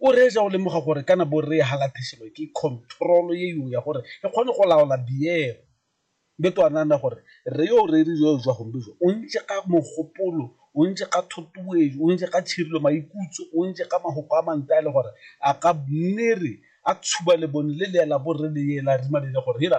O reetsa go lemoga gore kana bo re halatheselwa ke control ye yo ya gore e kgone go laola biero. Be to a nana gore re yo re re yo jwa gombe jo o ntse ka mogopolo, o ntse ka thotuwetso, o ntse ka tshirilo maikutso, o ntse ka mahoko a mante a le gore a ka nne re a tshuba lebone le le ya la bo re le ye la rima le le gore hela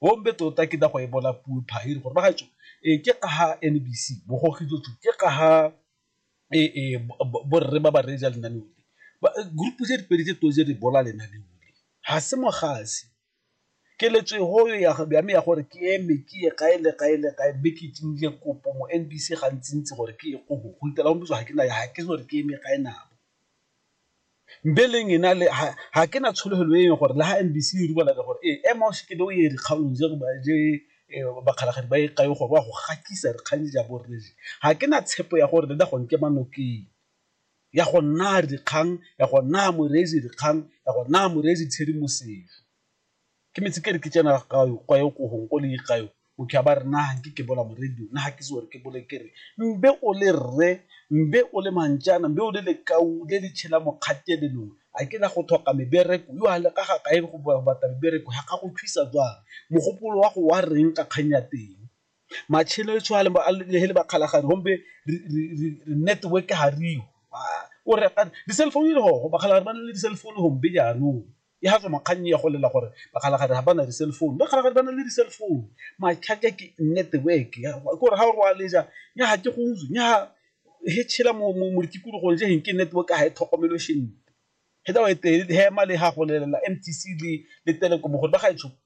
Bombe tota ke da go ebola puo phairi gore ba gaetsho e ke ga ha NBC bo go gidotso ke ga ha e e bo re ba ba reja lena le ba group tse di pedi tse to je di bola lena le ule ha se mo gase ke le tswe ho yo ya ga me ya gore ke eme ke ye ga ele ga ele ga be ke tsinje kopo mo NBC ga ntsintsi gore ke go go itela go ntse ga ke na ya ha ke gore ke eme ga ena Mbeleng ena le ga ke na tsholofelo e leng gore le ga N_B_C e re ke gore ee ema o se ke be o ye dikgaolong tse bakgalagadi ba e kae gore wa go gakisa dikgang ja bo rre je, ga ke na tshepo ya gore le na go nkema nokeng ya go naya dikgang ya go naya moreetsi dikgang ya go naya moreetsi tshedimosetso. Ke metse ke re ke tsena ga yo kwa yo ko gong ko le ga yo motho ya ba re nna nke ke bola moredi nna ga ke se gore ke bole ke re mbe o le rre mbe o le manjana mbe o le lekau le le tshela mokgatelelong a ke la go tlhoka mebereko yo a le ka ga kae go batla mebereko ga ka go thusa jwang mogopolo wa go wa reng ka kgang ya teng. Matshelo e tshwana le he le bakgalagadi gombe re network ga re yo o re di-cellphone le go bakgalagadi ba na le di-cellphone gombe jaanong e ga tswa makganni ya go lela gore bakgalagadi ga ba na di-cell phone bakgalagadi ba na le di-cell phone matlhaka ke network ke gore ga o roaleja nya ga ke go utswe nya he tshela mo ditikologong je geng ke network ga e tlhokomelo shente he tsa wa e tele he ema le ga go lelela M_T_C le le telekomo gore ba ga e tshopo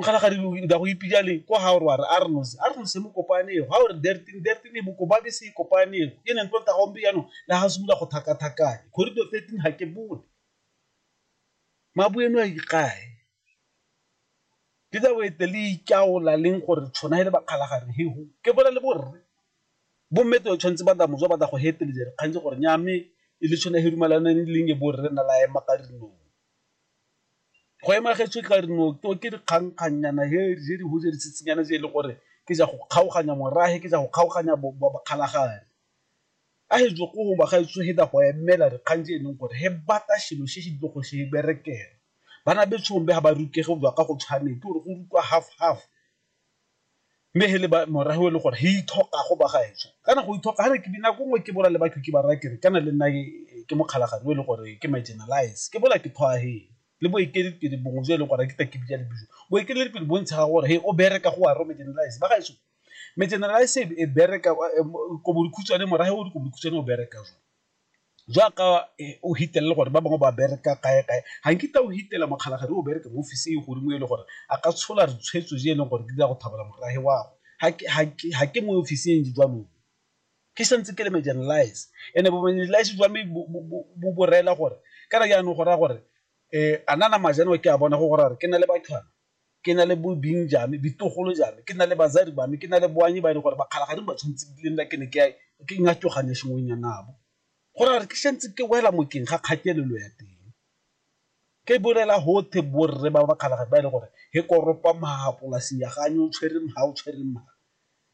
o kgala ga dilo nda go ipija le ko ha o rware a re nose a re nose mo kopane go ha o re derting derting e boko ba be se kopane go ke neng tlonta gombe yano le ha se bula go thaka thakane corridor 13 ha ke bone mabueno a ikae ke tsa boete le ikaola leng gore tshwana hele ba kgala ga re he ho ke bola le borre bo mme to tshwantse ba da mojo ba da go hetele jere kgantse gore nya me e le tshwana he rumalaneng leng e borre na la ema ka dinong Go ema getsho e tla re no ke dikgangkgangnyana he je di huje di tshitsinyana je e le gore ke ja go kgaoganya morahe ke ja go kgaoganya bokgalagadi. A he jo go ba gaetsho he da go emela dikgang je e leng gore he bata shelo she she dilo go she berekela. Bana betshong be ha ba rukege go jwa ka go tshwane ke gore go rutwa half half mme he le ba morago e le gore he ithoka go ba gaetsho kana go ithoka ga re ke dinako nngwe ke bola le batho ke ba raya kere kana le nna ke mokgalagadi o e le gore ke marginalize ke bola ke thoa he le boeteledipele bongwe jo e leng gore ke ta ke bitsa le bijo boeteledipele bo ntsha gore he o bereka go wa ro marginalize ba gaetsho marginalize e bereka ko bokhutshwane morago o dikobodikhutshwane o bereka jwa. jaaka o fitlhelele gore ba bangwe ba bereka kae kae, ga nkitla o fitlhela mokgalabje o bereka mo office e godimo e le gore a ka tshola ditshwetso tse e leng gore di tla go thabela morafe wa gagwe, ga ke mo office e ntseng jalo ke santse ke le marginalize and-e bo marginalize jwa me bo rela gore kana jaanong go raya gore a na nama jalo ke a bona go gore ke na le . Ke na le bo bing ja me, bitogolo ja me, ke na le bazadi ba me, ke na le boanye ba e leng gore ba kgalagadi ba tshwanetse ke le nna ke ne ke ke ngatogane sengwenyana nabo. Go raya gore ke santse ke wela mokeng ga kgatelelo ya teng, ke bolela gotwe borre ba ba kgalagadi ba e leng gore he koropa maha polase ya ga o tshwere maha o tshwere maha.